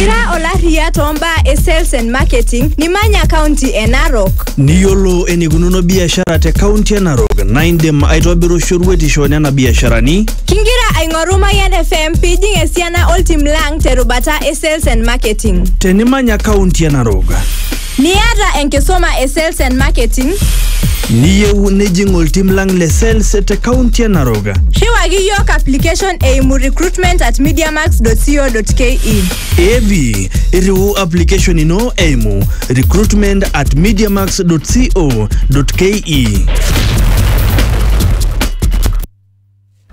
Ira olaria too mbaa e sales and marketing nimanya kaunti e Narok. Niyiolo enikununo biashara te kaunti e Narok naa indim aitobiru shoruetisho nena biasharani. Kingira aing'oru Mayian FM pijing esiana oltim lang terubata e sales and marketing. Tenimanya kaunti e Narok. Niata enkisuma e sales and marketing? Niyieu nijing oltim lang le sales te kaunti e Narok? Rriwaki iyiook application eimu recruitment at mediamax.co.ke. Evi, irriu application ino eimu recruitment at mediamax.co.ke.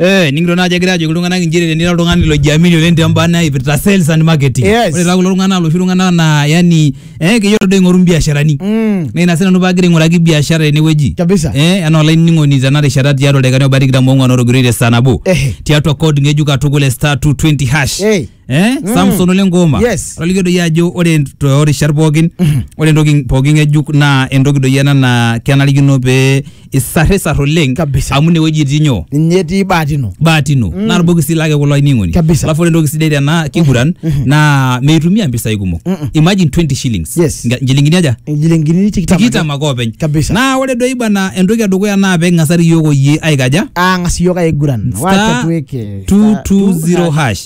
Eh, ningito naaji egira ajoki iltung'anak injere tenira oltung'ani lojiamini oleng te mbaa naipirta sales and marketing. Yes. Ore taa kulo tung'anak loshi tung'anak naa yani eh keyiolo doi aing'oru mbiasharani. Mm. Naa ina sii nanu paagira aing'uraki biashara tenewueji. Kabisa. Eh, anaa olainining'oni tena rishata tiatua ildaikani obaya tikitam oong'wan otogiroitie saa nabo. Ehe. Tiatua code ng'ejuk katukul e star 220 hash. Hey. eh Mm. Samson ole ngoma Yes. atolikio doi ajo ore toorishat pookin ore entoki pookin ng'ejuk naa entoki doi ena naa kenarikino pee isarrisar oleng Kabisa. amu inewueji itii nyoo ninye etii bahati ino bahati ino Mm. naa irbokisi lake kulo ainining'oni Kabisa. alafu ore entoki sidai tena kiguran naa meitumia mpisai kumok Mm-mm. imagine 20 shillings Yes. Nga- nchilingini aja injilingini tikitam tikitam ake openy Kabisa. naa ore doi bana entoki edukuya naa peking'asari yiok oyie aikaja ang'as iyiok aiguran Star wacha tuweke 220 hash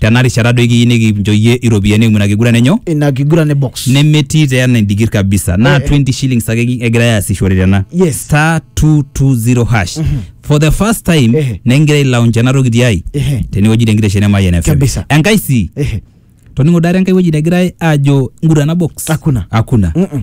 tena rishata doi kiyieu nikincho iyie iropiyiani eimu ina kiguran enyo ina kiguran e box nemetii taa ena endigir kabisa naa Eh, eh. 20 shillings ake ki- egirai aasishore tena Yes. star 220 hash for the first time Ehe. negira ailaunch ena toki tiai Ehe. tenewueji tenkitesheni emayian FM Kabisa. enkai sii Ehe. toning'o dare enkai wueji negirai aajo ngurana box Hakuna. hakuna Mm-mm.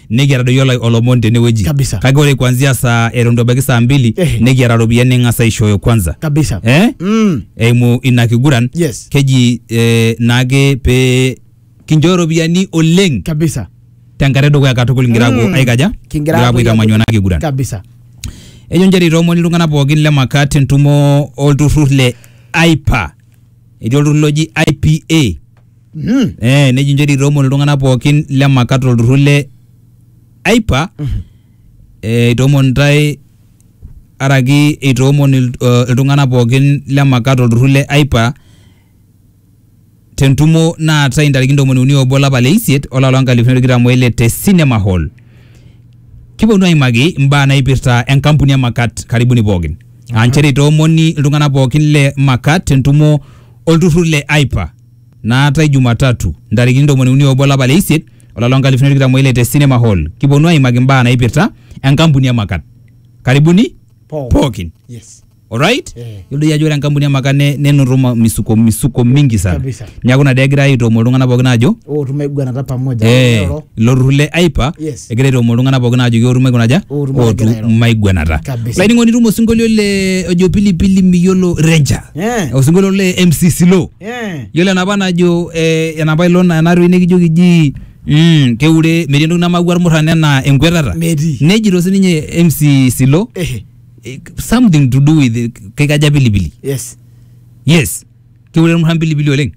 nikiata doi ola- olomoni tenewueji Kabisa. kake ore kuanzia saa eton itu ebaiki saa mbili Ehe. nikiata ropiyiani ning'as aishooyo kwanza kabisa eh? mm. eimu ina kiguran Yes. keji eh, naake pee kinchooyo ropiyiani oleng kabisa tenkata edukuya katukul ngira aapuo Mm. aikaja Kingira aapuo aitamanyua ena kiguran kabisa ejo nchere itoomoni iltung'anak pookin le makat entumo olturrur le aipa etii olturrur loji ipa Mm. eh, neji njori itoomon iltung'anak pookin le makat olturrur le aipa eh, itoomon ntae araki itoomon il- eh, iltung'anak pookin le makat olturrur le aipa tentumo naatae intarikini ntomoni uni obo olapa le isiet olapa loo nkalifuni are tikitam oile te cinema hall kiponu aimaki imbaa naipirta enkampuni e makat karibuni pookin aa nchere itoomoni iltung'anak pookin le makat tentumo olturrur le aipa naatae Jumatatu ntarikini ntomoni uni obo olapa le isiet olapa loo nkalifuni tikitam oile te Cinema Hall. Kiponu aimaki mbaa naipirta enkampuni e Makat. Karibuni Pooki. pookin. Yes. Alright? Eh. Yiolo doi ajo ore enkampuni e Makat ne- nenoto ma- misuko misuko mingi sana. Kabisa. Neaku ina dee egirai aitoomo iltung'anak pookin aajo Ootum aiguanata pamoja. eh, Ero. ilo turrur le AIPA Yes. egira aitoomo iltung'anak pookin aajo kiotum aikuna aja Ootum aigura airo. ootum maiguanata. Kabisa. Olainining'oni itum osinkolio le ojo pilipili miyiolo Ranger. Eh. osinkolio le MC Silo Eh. yiolo enapa najo eh, enapa ilo na- enatoki nikijoki ji mm, keure metii entoki namaua irmurran enaa enkwetata Metii. nejito sininye MC Silo Ehe. eh, something to do with eh, kikaja pilipili Yes. yes keure irmurran pilipili oleng